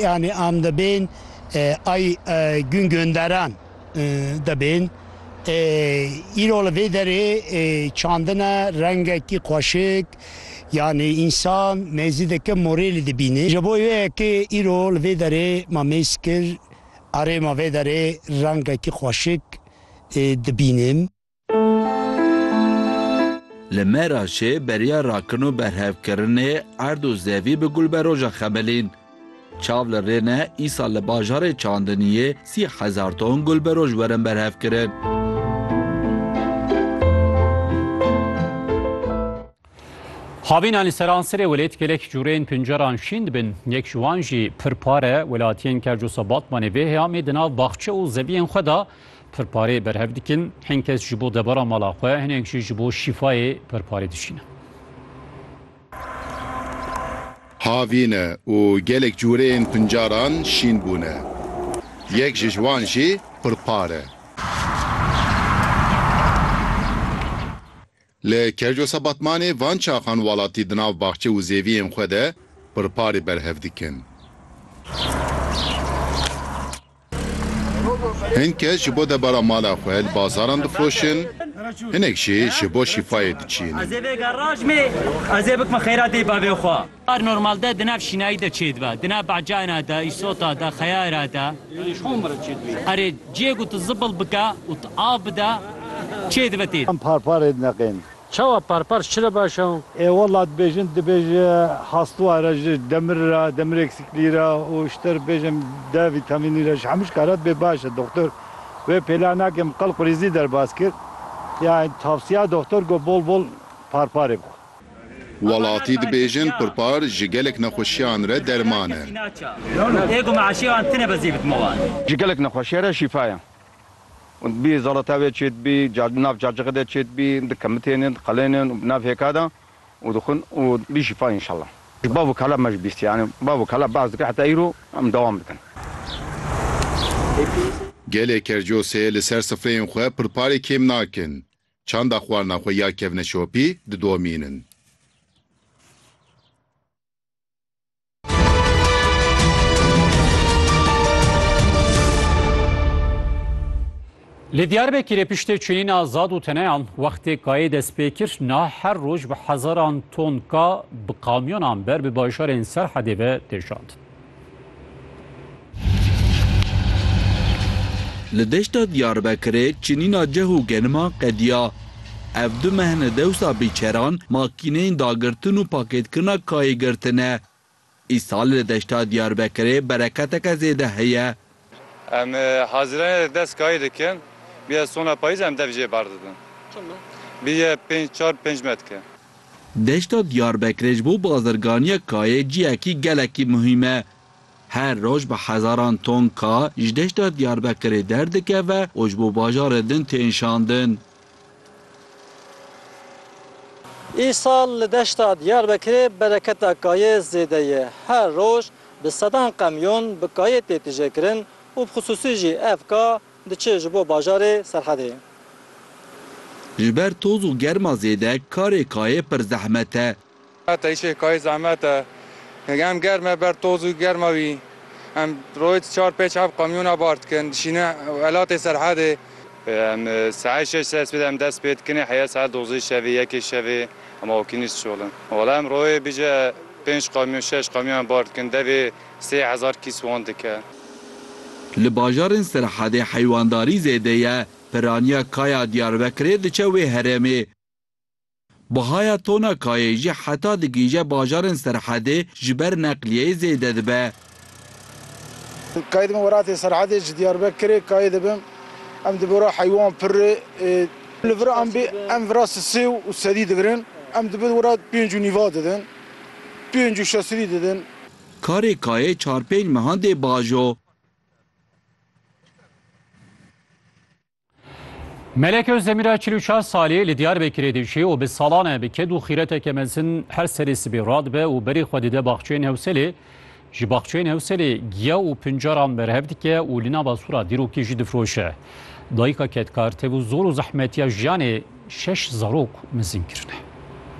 Yanî am dibên ay gûn gûnderan dibên. Îro li vê derê çandine rengekî xweşik yanî însan mêzî dikin morêlî dibînê. Ji bo wê yekê îro li vê derê ma mêz kir arê ma vê derê rengekî xweşik dibînim. Li Meraşê beriya rakin û berhevkirinê erd û zevî bi gul be roja Xemelîn. Çav li rê ne îsal li bajarê Çandiniyê sî hezar ton gul bi roj werin berhevkirin. Havînan li seransirê welêt gelek cûrên pinceran şîn dibin. Yek ji wan jî pirpare welatiyên Kercusa Batmanê vê heyamê di nav baxçe û zeviyên xwe de pirparê berhev dikin. Hin kes ji bo debara mala xwe, hinek jî ji bo şîfayê pirparê dişînin. Havîne û gelek cûrên pincaran şîn bûne. Yek ji wan jî pirpare. Li Kerjosa Batmanê van çaxan walatî di nav baxçe û zêviyên xwe de pirparê berhev dikin. Hin kes ji bo debara mala xwe li bazaran difiroşin, hinek jî ji bo şîfayê diçînin. Bar normal de di nav şînayî de çêdibe, di nav bacayna de, îsota de, xeyayra de. Erê ciyê ku tu zibil bike û tu av bide çêdibe tê de. Em parparê dineqên. Çawa parpar çi re baş e? Ê wela dibêjin dibêj hastuwa re ji demir re, demir eksikliği re û ji te re bêjim D vîtamînî re ji hemû şikare dibê baş e. Doktor wê pêla nake min qel qurîzî derbas kir. Yanî tavsiya doktor got bol bol parparê bixwe. Welatî dibêjin pirpar ji gelek nexweşiyan re derman e. Ji gelek nexweşiya re şîfa ye. Hûn dibî zalata wê çê dibî, di nav cacixê de çê dibî, di kemitên in, di qelên in û bi nav hêka de û dixwin û dibî şîfa înşallah. Ji bav û kala me jî bîst yanî bav û kala behs dikin heta îro em dewam dikin. Gelê Kercosê li ser sifreyên xwe pirparê kêm nakin. Çanda xwarina xwe ya kevne şopî didomînin. Li Diyarbekirê piştê çinîna zad û teneyan wextê kayê dest pê kir niha her roj bi hezaran ton ka bi kamyonan ber bi bajarên Serhedê ve tê şandin. Li deşta Diyarbekirê çinîna ceh û geniman qediya. Ev du mehne dewsa bîçeran makîneyên dagirtin û pakêtkirina kayê girtine. Îsal li deşta Diyarbekirê bereketeke zêde heye. Em hazirane dest kayî dikin. Bîye sona payîz em dev jê berdidin. Çima? Bîye pênc çar pênc metke. Deşta Diyarbekirê ji bo bazirganiya kayê ciyekî gelekî muhîm e. Her roj bi hezaran ton ka ji deşta Diyarbekirê derdikeve û ji bo bajarên din tên şandin. Îsal li deşta Diyarbekirê bereketa kayê zêde ye. Her roj bi sedan qemyon bi kayê tê tijêkirin û bi xisûsî jî ev ka diçe ji bo bajarê Serhedê. Ji ber toz û germa zêde karê kayê pir zehmet e. Heta îşê kayê zehmet e. Em germ e ber toz û germa wî. Em rojê di çar pêç heft kamyona bar dikin. Dişînin welatê serhedê. Em saet şeş sers pê de em dest pê dikin ê heya saet dozdehê şevê, yekê şevê em awkî nîş diçolin. Wala em rojê bije pênc kamyon şeş kamyon em bar dikin. Devê sê hezar kîs wan dike. Li bajarên serhedê heywandarî zêde ye. Piraniya Kaya Diyarbekirê diçe wê herêmê. Bihaya tona kayê jî heta digihîje bajarên Serhedê ji ber neqliyeyê zêde dibe. Kayê dibin welatê Serhedê ji Diyarbekirê kayê dibin em di bora heywan pirê. Li vir ambê em vira sisê û sedî dibirin em di bin wira pênc û nîva didin, pênc û şesidî didin. Karê kayê çar pênc mehan dê bajo. Melek Özdemir a çil û çar salî li Diyarbekirê dijî û bi salan e bi ked û xîreteke mezin her serê sibê radibe û berê xwe dide baxçeyên Hewselê. Ji baxçeyên Hewselê giya û pincaran berhev dike û li nava sura dîrokî jî difiroşe. Dayika kedkar tevû zor û zehmetiya jiyanê şeş zarok mezin kirine.